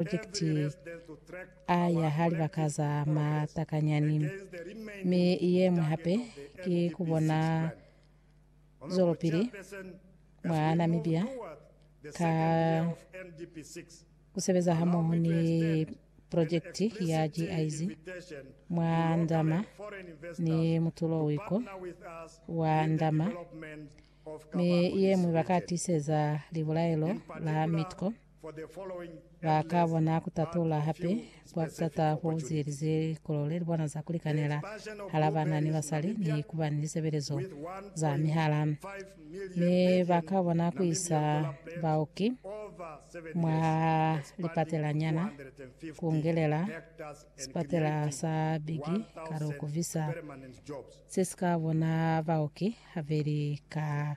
Purojekiti A ya ha Libaka za Matakanyani, mi ye ñwi hape ki ku bona zwelopili mwa Namibia ka ku sebeza hamoho ni purojekiti ya GIZ mwa ndama ni mutulo wiko wa ndama, mi ye ñwi ba ka tiseza libulaelo la Mitko. Ba ka bona ku tatula hape kwa ku tata ko ziyelize likolo le li bona za ku likanela hala bana ni basali ni ku ba ni lisebelezo za mihala. Mi ba ka bona ku isa baoki mwa lipatelanyana ku ngelela sipatela sa Biggie ka lu ku visa se si ka bona baoki habeli ka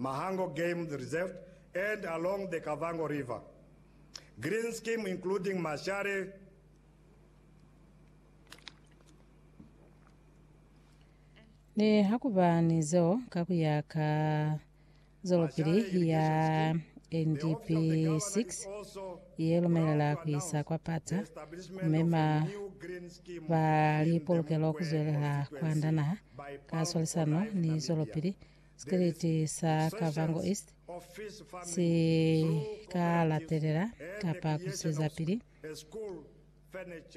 Mahango Game Reserve and along the Kavango River Green Scheme including Mashare Nihakuba ni zeo, ka ku ya ka zwelopili ya NDP 6 ye lumelela ku isa kwa pata ku mema ba lipolokelo ku zwelela ku anda naha ka swalisano ni zwelopili Sikriti sa Kavango East si ka latelela kapa ku zwezapili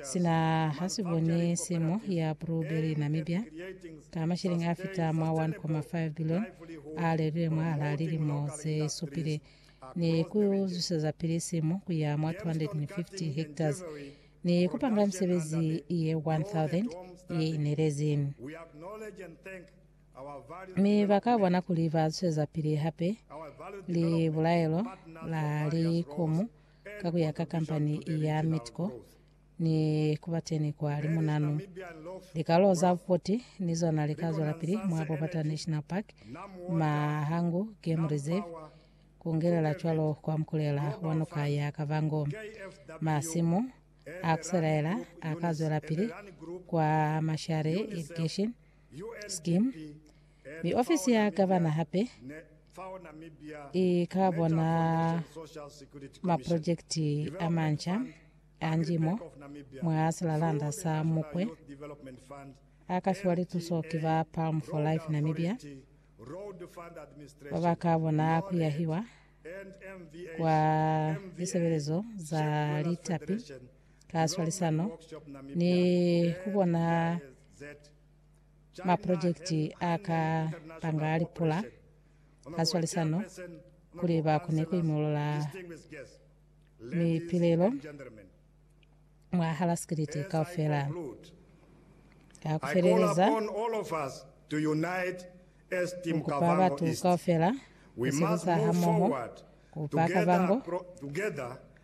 sina ha si boni simo ya bruberi Namibia ka mashilingi a fita mwa 1.5 bilioni a lelwile mwahalaa lilimo ze supile ni ku zwezapili simo ku ya mwa 250 hectares ni ku panga misebezi ye 1,000 ye inelezi. mi ba ka bona kuli ba zwezapili hape li bulaelo la likomu ka ku ya ka kampani ya Mitco ni ku ba teni kwa limunanu. Likalo za bupoti ni zona li ka zwelapili mwa Bobata National Park, Mahangu Game Reserve, ku ngelela cwalo kwa mukulela wa noka ya Kavango. Masimu a ku selaela a ka zwelapili kwa Mashare Irrigation Scheme, mi ofisi ya Gavana hape i ka bona maprojekiti a manca a njimo mwa silalanda sa Mukwe a ka fiwa lituso ki ba Palm for Life Namibia ba ba ka bona ku yahiwa kwa lisebelezo za litapi ka swalisano ni ku bona maprojekiti a ka panga a lipula ka swalisano kuli ba kone ku imolola mipilelo mwa hala sikiliti kaufela. Ka ku feleleza, ni kupa batu kaufela ku sebeza hamoho ku ba kabango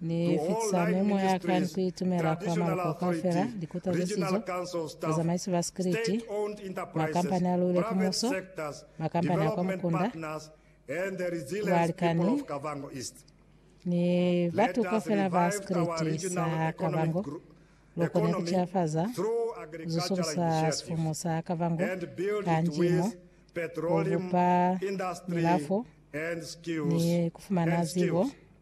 Ni fitisa memoya ya ka ni ku itumela kwa maloko kaufela, likuta ze sizo, bazamaisi ba sikiliti, makampani a luile ki muso, makampani a kwa mukunda, balikani, ni batu kaufela ba sikiliti sa Kavango, loko ni ku cilafaza, ku zusukusa sifumu sa Kavango ka njimo, ku bupa milafo, ni ku fumana zibo.